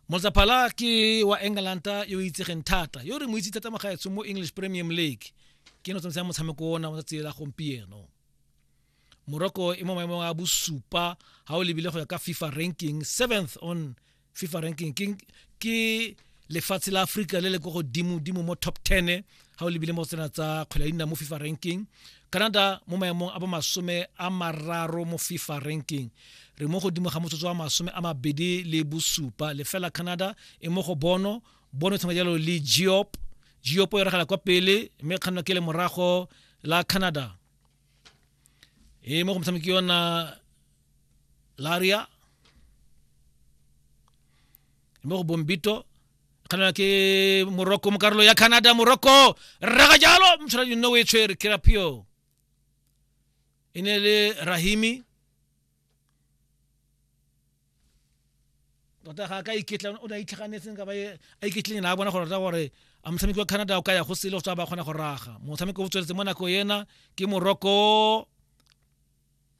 motsaphala ke wa england yo itsegeng thata yo re mo itse thata magaetsho mo english premium league ke no tsamaya motshameko ona wa tsela gompieno morocco e mo maemong a bosupa ga o lebile go ya ka fifa ranking seventh on fifa ranking ke, ke lefatshe la aforika le le ko godimo-dimo mo top 10 ga o lebile mo tsena tsa kgwele ya dinao mo fifa ranking canada mo maemong a bomasome a mararo mo fifa ranking re mo godimo ga motsotso wa masome a mabedi le bosupa lefela canada e mo go bono bono tshwana jalo le geop geop e ragala kwa pele mme kganno ke le morago la canada e mo go motshameki yona laria mo go bombito kganela ke morocco mo karolo ya canada morocco raga jalo motshwana dino o e tshwere ke rapio e ne le rahimi tota ga ka iketla o ne a itlhaganetseng ka ba e, a iketleng na a bona gore gore a motshameki wa canada o ka ya go sele go tswa ba kgona go raga motshameko o tsweletse mo nako ena ke moroko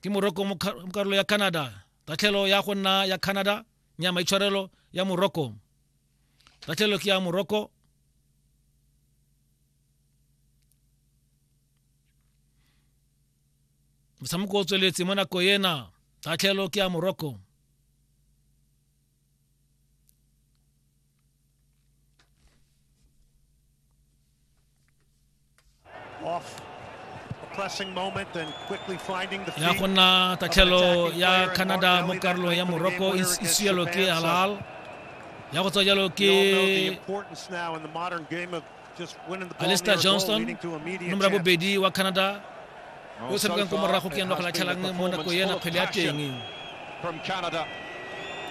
ke moroko mo karolo ya canada tatlhelo ya go nna ya canada nya maitshwarelo ya moroko tatlhelo ke ya moroko motshameko o tsweletse mo nako ena tatlhelo ke ya morocco ya go nna tatlhelo ya canada mo karolong ya morocco e sielo ke halal ya go tswa jalo ke alister johnston nomoro ya bobedi wa canada yo o tshamekang ko morago ke ene wa go latlhelang mo nako ena kgwele ya teng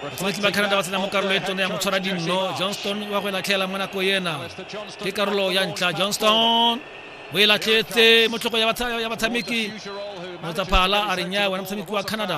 batshameki ba canada ba tsena mo karolo e tsone ya motshwara dinno johnston wa go e latlhela mo nako ena ke karolo ya ntlha johnston o e latlhetse mo tlhoko ya batshameki motsaphala a re nya wena motshameki wa canada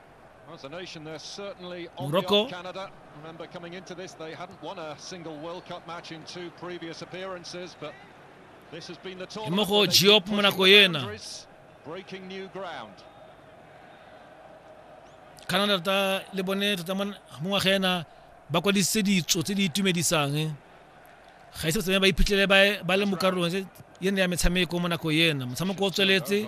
Morocco. Remember coming into this, they hadn't won a single World Cup match in two previous appearances, but this has been the tournament. Morocco Diop Monaco yena. Breaking new ground. Canada ta le bone tota mo ngwaga ena ba kwadisitse ditso tse di itumedisang eh. ga ise tsene ba iphitlhele ba le mo karolong yene ya metshameko mo nako yena motshameko o tsweletse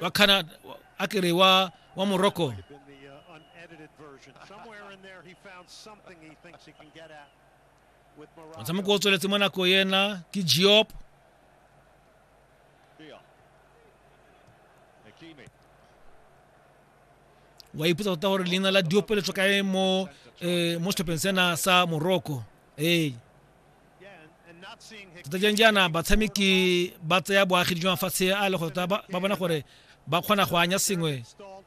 wa canada a ke re wa wa morocco uh, motshameko o tsweletse mo nako ena ke geop wa ipotsa tota gore leina la diopeletswa kae mo eh, mo setlhopheng sena sa morocco ee tota jang jaana batshameki ba tseya boagi jwa mafatshe a le gore tota ba bona gore ba kgona go anya sengwe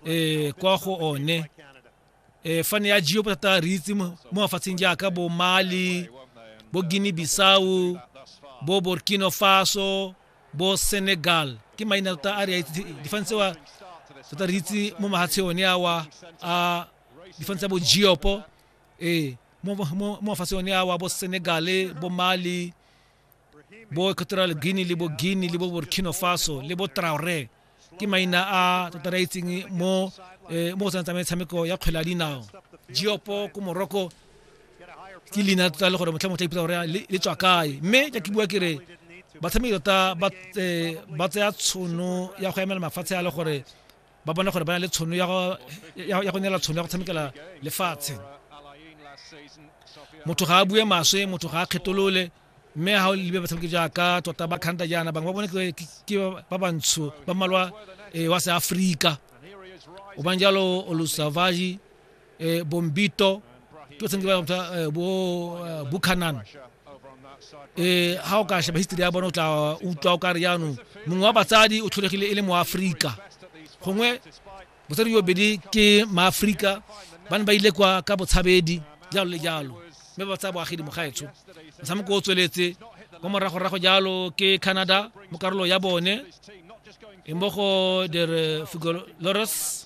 um kwa go one um fane ya geo thata re itse mo mafatsheng jaaka bo mali bo guinea bisau bo burkina faso bo senegal ke maina tota a re a itse difane tsewa tota re itse mo mahatshe one awa a difane tsa bo geopo ee mo mo- mo mafatsheng one a wa bo senegale bo mali bo equatorial guinea le bo guinea le bo burkina faso le bo traore ke maina a tota re a itseng mo eh, mo go tsena tsa metshameko ya kgwele ya dinao geopo ko morocco ke leina tota le gore motlha motlha ipitsa gore le le tswa kae mme ja ke bua ke re batshameki tota ba eh, ba tsaya tshono ya go emela mafatshe a le gore ba bone gore ba na le tshono ya go neela tshono ya go tshamekela lefatshe motho ga a bue maswe motho ga a kgetolole mme ga o lebe batshameki jaaka tota ba kganta jaana bangwe ba bone ke ba bantsho ba malwa eh, wa seaforika o bang jalo olusavaji eh, bombito ke tseng ba motsa eh, bo eh, bukhanan eh ha o ka sheba history ya bona o tla utlwa o ka re jaanong mongwe wa batsadi o tlholegile e le moaforika gongwe botsadi yo bedi ke maaforika ba ne ba ile kwa ka botshabedi jalo le jalo mme ba tsaya boagedi mogaetsho motshameko o tsweletse mo moragorago jalo ke canada mo karolo ya bone e mmogo der figolores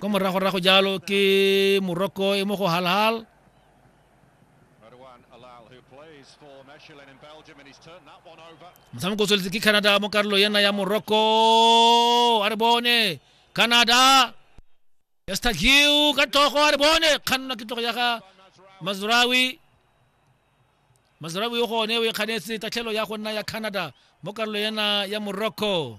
ko moragorago jalo ke morocco e mo go halhal motshameko o tsweletse ke canada mo karolo ena ya morocco a re bone canada estagiu ka togo a re bone kgannwa ke togo ya ga mazrawi mazrawi o gone o e kganetse tatlhelo ya go nna ya canada mo karolo ena ya morocco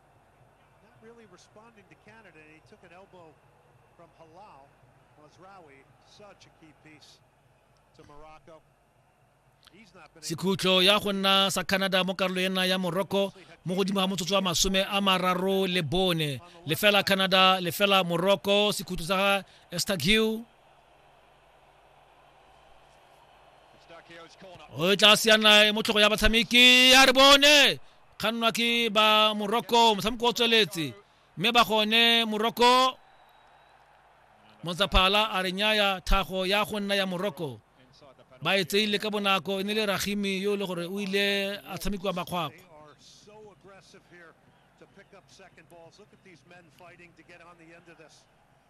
Not really responding to Canada. He took an elbow from Halal Mazraoui, such a key piece to Morocco. He's not been able sekhutlo ya go nna sa canada mo karolo ena ya morocco mo godimo ga motsotso wa masome a mararo le bone lefela canada lefela morocco sekhutlo sa ga estaghiw o e tla siana mo tlhogo ya batshameki a re bone kgannwa ke ba morocco motshameko o tsweletse mme ba gone morocco montsaphala a re nyaya thago ya go nna ya morocco ba e tseile ka bonako e ne le ragimi yo e le gore o ile a tshamekiwa makgwakgwa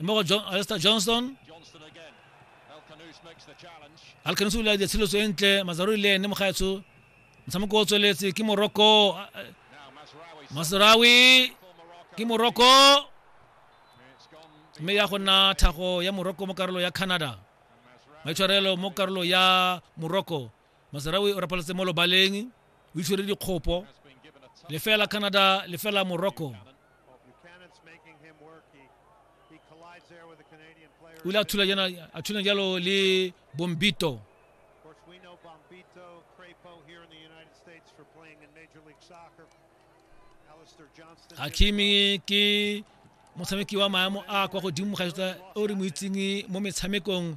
e mo go John, Alistair Johnston Alkanus o ile a dira tshiletso e ntle Mazaruri le ene mogaetsho motshameko o tsweletse ke Morocco Masrawi ke Morocco mme ya go nna thago ya Morocco mo karolo ya Canada maitshwarelo mo karolo ya Morocco masarawi o rapaletse mo lobaleng o itshwere dikgopo lefela canada lefela morocco o ile a thula jalo le bombito hakimi ke motshameki wa maemo a kwa godimo ga o re mo itseng mo metshamekong